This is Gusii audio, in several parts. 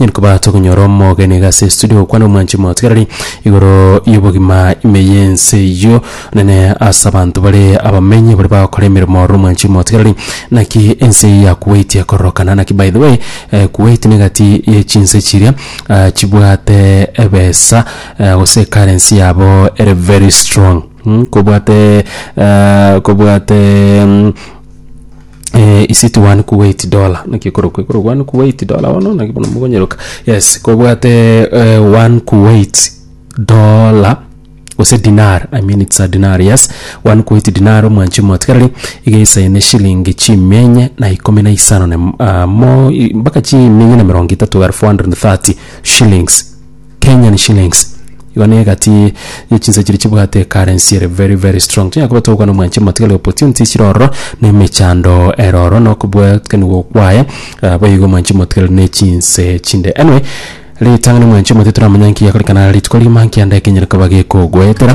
Onye koba tokonyora omogenigwa ase studio gokwana omwanchi omotigarari igoro y'obogima ime y'ense eyio, onene ase abanto bare abamenyi baria bagokora emeremo ore omwanchi omotigarari, naki ense eyio yakuweitie kororokana. Naki by the way, eh, Kuwait negati ye chinse chiria ah, chibwate ebesa eh, gose ecurrency yabo ere very strong. Mh, kobwate eh, kobwate mm, Eh, is it one kuwait dollar naki ekorokwa ekorokwa one kuwait dollar bono naki bono mogonyeroka yes kobwate eh, one kuwait dollar gose dinar i mean it's a dinar yes one kuwait dinar omwanchi omotigareri igeisaine shilingi chimia enye na ikomi na isano na im- ah, mo i- mpaka chimia enye na emerongo etato 430 shillings Kenyan shillings igo na egati ye chinsa chiri chibwate ekarensi ere very very strong tonya koba togokwana mwanche motigari opportunity chire ororo na emechando ere ororo na okobwatanigwa kwaye ah, boigo igo mwanche motigari na echinse chinde anyway ritang'ani mwanche motigari toramanya nki yakoreka na rituko rigima nki ande ekenyare koba gekogoetera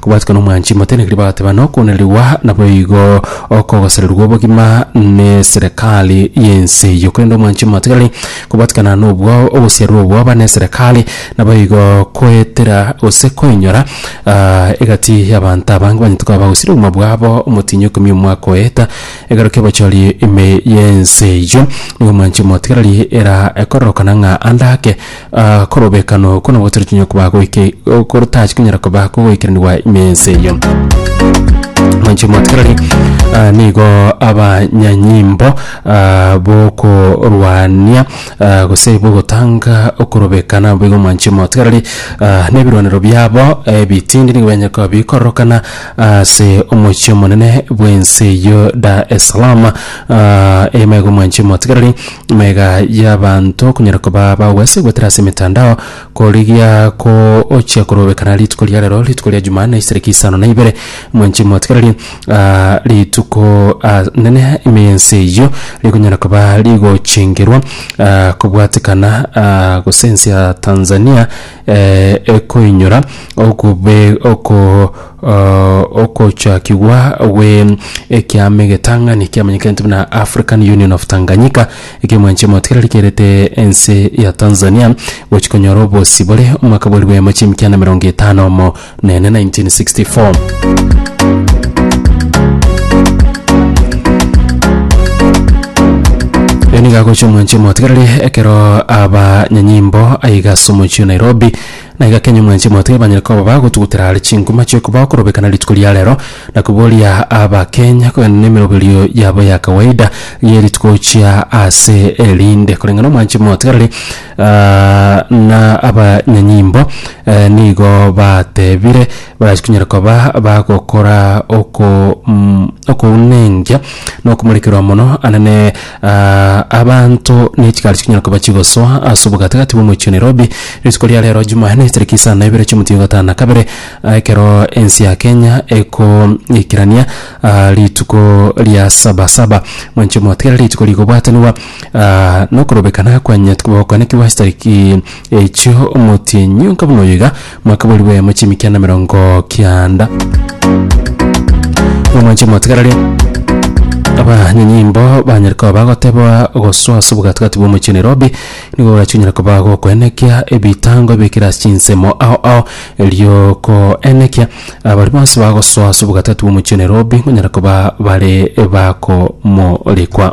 Kobwatika nomwanchi motenenekiri bagateba nokoonenrigwa naboigo okogosererigwa obogima neserekari y'ense eyio. Korende omwanchi motegereri kobwatikana nobwao ogosiarerwa obwoba neserekari naboigo koetera gose koinyora ah, egati y'abanto abange banyete koba bagosiria obogima bwabo omotinyi okomia omwaka oeta egaro ki'obochori ime y'ense eyio. Nigo omwanchi motegereri era ekororokana ng'a ande ake Aa, korobekano oko nabo tore tonya koba goike okoro tachi konyara koba kogoikeranigwa ime ense eyio. Mwanche motikereri aa nigo abanyanyimbo aa bokorwania aa gose bogotanga okorobekana abo igo mwanche motikereri aa na ebirwanero biabo ebitindi nigo bianche koba bikororokana ase omochie omonene bw'ense eyio Dar es Salaam aa eye maigo mwanche motikereri. Mega y'abanto okonyara koba bagwesa egwetera ase emetandao korigia ko ochia korobekana rituko ria rero rituko ria Jumanne isariki isano na ibere mwenche mwatigererie ah, rituko ah, nene ime y'ense eyio rikonyara koba rigochengerwa ah, kobwatekana ah, gose ense ya Tanzania eh, ekoinyora okobe oko Ogochakigwa gwe ekiama egetang'ani kiamenyekete buna African Union of Tanganyika ekia mwanchi omotigari rikerete ense ya Tanzania gochi konyora obosi bore omwaka bwa ribemo chi'emikianda emerongo etano omo na ene 1964. Yo nigo agocha omwanchi omotigareri ekero abanyanyimbo aiga ase omochie o Nairobi Na igakenya mwensi omote ebanyare koba bagotugutera are chinguma chi'okobao korobekana rituko ria rero, na koboria Abakenya kogenda nemeroberio yabo ya kawaida y'erituko gochia ase erinde. Koreng'a nomwanchi omotigareri na abanyanyimbo nigo batebire barachikonyare koba bagokora okounengia nokomorekerwa mono anene Aa, abanto ne chigari chikonyara koba chigosoa ase obogatagati bw'omochie o Nairobi rituko ria rero Jumanne tariki isano na ibere chi'omotienyi o gatano na kabere, aa, ekero ense ya Kenya ekoikerania aa rituko ria Sabasaba. Mwanche motegerere rituko rigobwatanigwa aa nokorobekana kwanyetwe gokwanekigwa ase tariki echio omotienyi onka buna oyo iga. Mwakaborigwe eyemo chimikia na merongo kianda. Omwanche mwatigararia. Abanyanyimbo banyare koba bagoteba gosoa ase obogatagati bwa omochie Nairobi nigo gorachinyara koba gokoenekia ebitango ebikire ase chinsemo ao ao riokoenekia abari bonsi bagosoa ase obogatagati bwa omochie Nairobi onyare koba bare bakomorikwa.